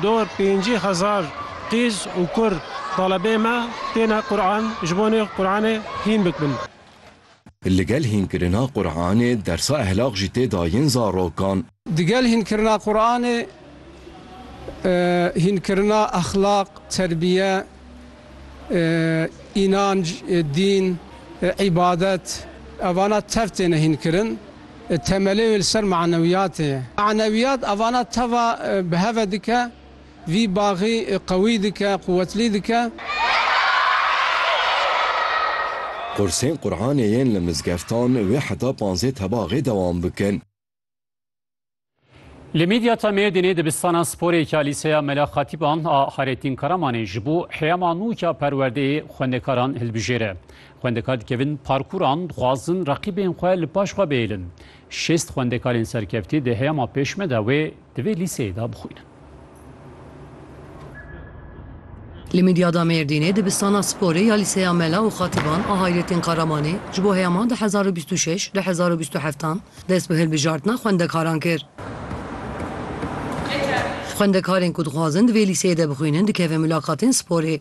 Dor pêncî hezar qîz û kur talebê me têne Quran ji bo nê Quranê hîn bikbin. Ligel hînkirina Quranê dersa ehlaq jî tê da yên zarokan. Digel hînkirina Quranê hînkirina exlaq, terbiye, înanc, dîn, îbadet evana tev têne hînkirin. Temelê wê li ser manewiyatê ye. Manewiyat evana teva bi hev ve dike, vî baxî qewî dike, quwetlî dike. Qursên Quranê yên li mizgeftan wê heta panzê tebaxê dewam bikin. Li Midyata Mêrdînê dibistana sporê ya Lîseya Mela Xatîban a Hayrettin Karamanê ji bo heyama nû ya perwerdeyê xwendekaran hilbijêre. Xwendekar dikevin parkûran, dixwazin reqîbên xwe li paş xwe bihêlin. Şêst xwendekarên serkeftî di heyama pêşme de wê di vê lîseyê de bixwînin. Li Midyada Mêrdînê dibistana sporê ya Lîseya Mela û Xatîban a Hayretîn Karamanê ji bo heyama du hezar û bîst û şeş du hezar û bîst û heft an dest bi hilbijartina xwendekaran kir. Xwendekarên ku dixwazin di vê lîseyê de bixwînin dikevin mulaqatên sporê.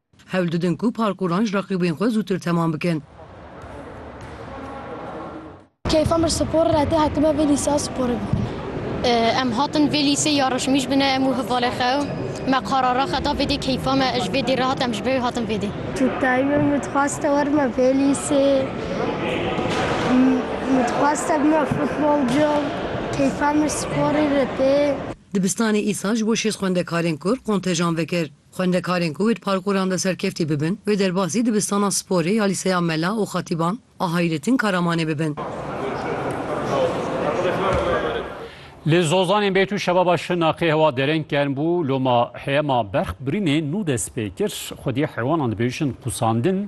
Hewl didin ku parkûran ji reqîbên xwe zûtir temam bikin. Keyfa mir spor re tê hatime vê lîseya sporê bixwînim. Em hatin vê lîsê ya reşimîj bine em û hevalê xwe û me qarara xwe da vê dê keyfa me ji vê dê re hat em ji ber hatin vê dê. Tu dayîmê min dixwaste werime vê lîsê min dixwaste bime futbolcu keyfa mir sporê re tê. Dibistanê îsal ji bo şêst xwendekarên kur kontejan vekir. Xwendekarên ku wê di parkûran de serkeftî bibin, wê derbasî dibistana sporê ya Lîseya Mela û Xatîban a Hayrettin Karamanê bibin. Li Zozanê Bêtû şebaba Şirnexê hewa dereng germ bû, loma heyema berxbirînê nû dest pê kir. Xwedî heywanan dibêjin qûsandin.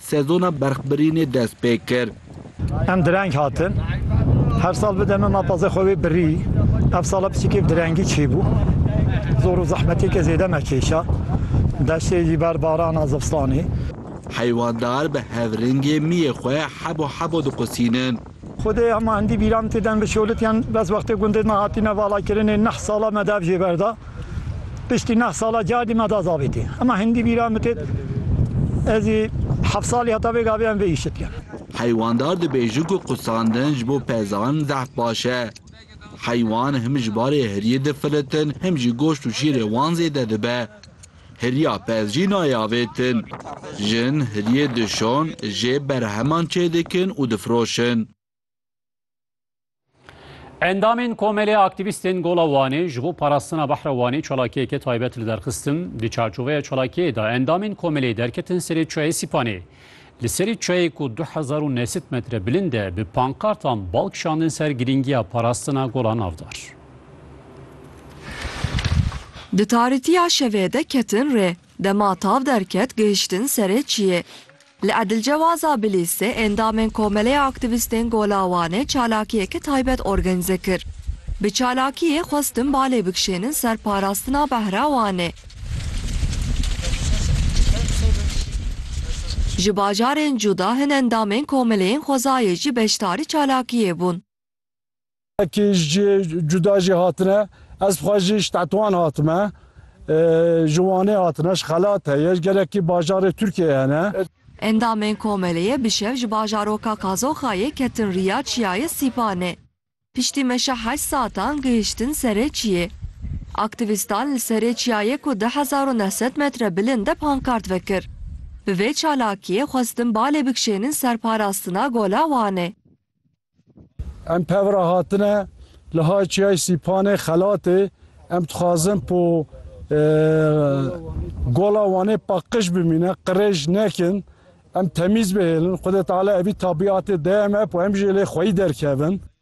Sezona berxbirînê dest pê kir. Em direng hatin. Her sal bi demê ma pazdeh xwe wê birî. Ev sala pisîkê bi direngî çêbû. Zor û zehmetêkê zêde me kêşa. Deştê jî ber barana zivistanê. Heywan dar bi hev ringê miyê xwe hebo hebo diqusînin. Xwedê hema hindî bîran tê dem bi şolitiyan bes wextê gundê me hatîne valakirinê neh sala me dev jê berda. Piştî neh sala cardî me da zavêtî. Hema hindî bîran min têt ezî heft salî heta vê gavê em vê îşitiyan. Heywandar dibêjin ku qusandin ji bo pezan zehf baş e. Heywan him ji barê hiriyê difilitin him jî goşt û şîrê wan zêde dibe. Hiriya pez jî nayê avêtin. Jin hiriyê dişon jê berheman çêdikin û difiroşin. Endamên Komelê Aktîvîstên Gola Wanê ji bo parastina behra Wanê çalakiyeke taybet li der xistin. Di çarçoveya çalakiyê de endamên komelê derketin serê çayê Sîpanê. Li serê çayê ku du hezar û neh sed metre bilind e bi pankartan bal kişandin ser girîngiya parastina gola navdar. Di tarîtiya şevê de ketin rê. Dema tav derket gihiştin serê çiyê. Li Edilcewaza Bilîstê endamên Komeleya Aktîvîstên Gola Wanê çalakiyeke taybet organîze kir. Bi çalakiyê xwestin balê bikişênin ser parastina behra Wanê. Ji bajarên cuda hin endamên komeleyên xwezayê jî beşdarî çalakiyê bûn. Kê ji cihê cuda jî hatine, ez xwe jî ji Tetwan hatime. Ji Wanê hatine, ji xelat heye, ji gelekî bajarê Tirkiyeyê hene. Endamên komeleyê bi şev ji bajaroka Kazoxayê ketin riya Çiyayê Sîpanê. Piştî meşa heşt satan gihiştin serê çiyê. Aktivîstan li serê çiyayê ku du hezar û neh sed metre bilind e pankart vekir. Bi vê çalakiyê xwestin balê bikişênin ser parastina Gola Wanê. Em pevra hatine li hay çiyayê Sîpanê xelatê em dixwazin po e, gola Wanê paqij bimîne, qirêj nekin, em temîz bihêlin, Xwedê Teala evî tabîatê deyeme po em jê lê xweyî derkevin.